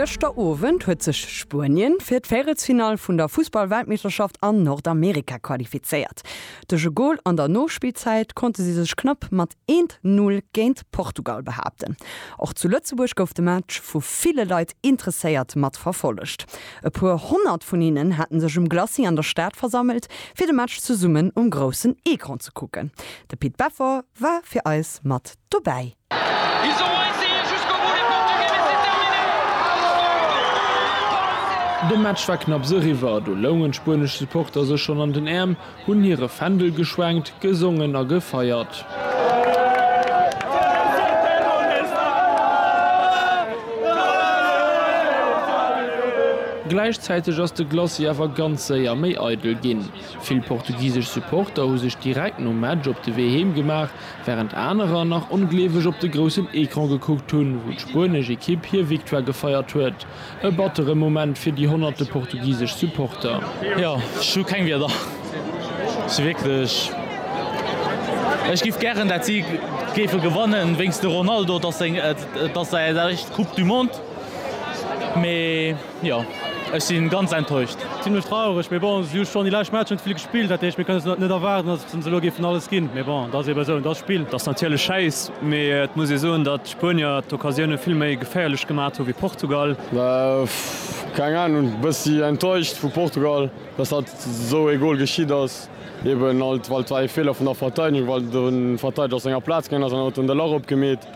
Gëschter Owend huet sech Spuenien fir d'Véierelsfinall vun der Fussball-Weltmeeschterschaft an Nordamerika qualifizéiert. Duerch e Gol an der Nospillzäit konnte si sech knapp mat 1, 0 géint Portugal behaapten. Och zu Lëtzebuerg gouf de Match vu ville Leit interesséiert mat verfollegt. E puer Honnert vun hinnen haten sech um Glacis an der Stad versammelt, fir de Match zesummen um groussen Ecran ze kucken. De Pit Beffer war fir eis mat dobäi. De Match war knapps eriwwer, do loungen d'spuenesch Supporter sech schonn an den Äerm, hunn hire Fändel geschwenkt, gesongen a gefeiert. Gläichzäiteg ass de Glacis awer ganz séier méi eidel ginn. Vill portugisesch Supporter hu sech direkt nom Match op de Wee heem gemaach, Wärend anerer nach ongleeweg op de groussen Ecran gekuckt hunn, wou d'spuenesch Ekipp hir Victoire gefeiert huet. E battere Moment fir déi honnerte portugisesch Supporter. Jo, ech hu keng Wierder. Ech si wierklech, ech giff gären dat si géife gewannen wéinst de Ronaldo, et ass seng, et ass säi éischt Coupe du Monde, mee. Jo, ech si ganz enttäuscht. Zimlech traureg, mee bon, si hu schonn déi lescht Matcher net vill gespillt, dat heescht mir kënnen se net erwaarden, datt se elo géifen alles ginn. Mee bon, dat ass eebe esou, et ass d'Spill. Dat ass natierlech schäiss, mee et muss ee soen, datt d'Spuenier d'Occasioune vill méi geféierlech gemat hu wéi Portugal. Keng Anung, bëssi enttäuscht vu Portugal, datt hatt esou ee Gol geschitt ass. Eeben alt, well et war ee Feeler vun der Verteidegung, well de Verteideger aus senger Plaz gaangen ass an huet dunn de Lach opgemeet.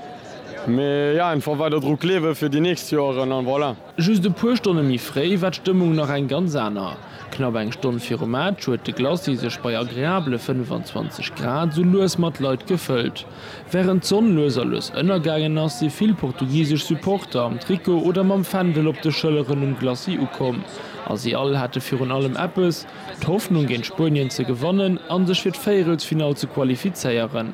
Mee jo, einfach weider dru gleewen fir déi nächst Joeren an voilà. Just e puer Stonne méi fréi war d'Stëmmung nach eng ganz aner. Knapp eng Stonn virum Match huet de Glacis sech bei agreabele 25 Grad sou lues mat Leit gefëllt. Wärend d'Sonn lues a lues ënnergaangen ass, si vill portugisesch Supporter am Trikot oder mam Fändel op de Schëlleren um Glacis ukomm a si all hate virun allem eppes, d'Hoffnung géint Spuenien ze gewannen a sech fir d'Véierelsfinall ze qualifizéieren.